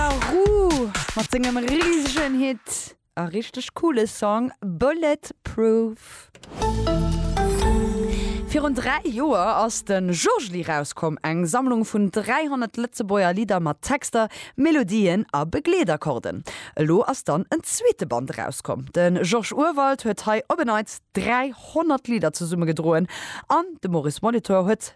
La Roux mat sengem risegen Hit a richteg coole Song Bullet Proof. Virun 3 Joer ass de Jojely rauskomm, eng Sammlung vun 300 Lëtzebuerger Lidder mat Texter, Melodien a Begleetakkorden. Elo ass dann en zweete Band erauskomm. De Georges Urwald huet hei op en Neits 300 Lidder zesummegedroen an de Maurice Molitor huet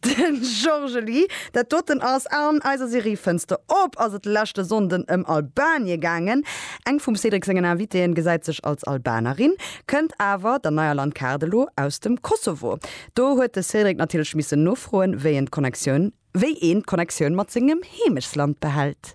Den Jorgeli, dat doten ass an eiser Serie Fënster op ass et leschte Sonnden ëm Albanien gaangen. Eng vum Cédric sengen Invitéen gesäit sech als Albanerin, kënnt awer der neier Landkaart elo aus dem Kosovo. Do huet de Cédric natierlech missen nofroen, wéi een d'Connectioun, wéi een d'Connectioun mat sengem Heemechtsland behält.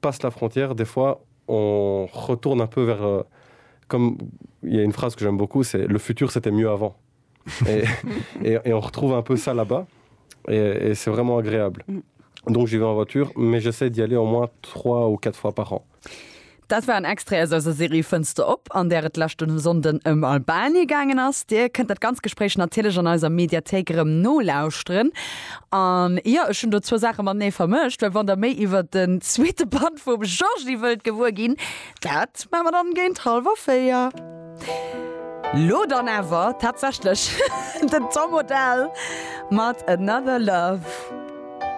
passe la frontière, des fois on retourne un peu vers comme il y a une phrase que j'aime beaucoup c'est le futur c'était mieux avant et et on retrouve un peu ça là-bas et c'est vraiment agréable. Mm. Donc j'y vais en voiture, mais j'essaie d'y aller au moins 3 ou 4 fois par an. Dat war en Extrait aus eiser Serie Fënster op, an där et d'leschten e Sonnden ëm Albanien gaangen ass. Dir kënnt dat ganz Gespréich natierlech an eiser Mediathéik erëm nolauschteren. An jo, ech hunn do zwou Saache matenee vermëscht, well wann der méi iwwert den zweete Band vum Georgie wëllt gewuer ginn, dat maache mer dann géint hallwer véier. Lo dann awer tatsächlech den Tom Odell mat Another Love.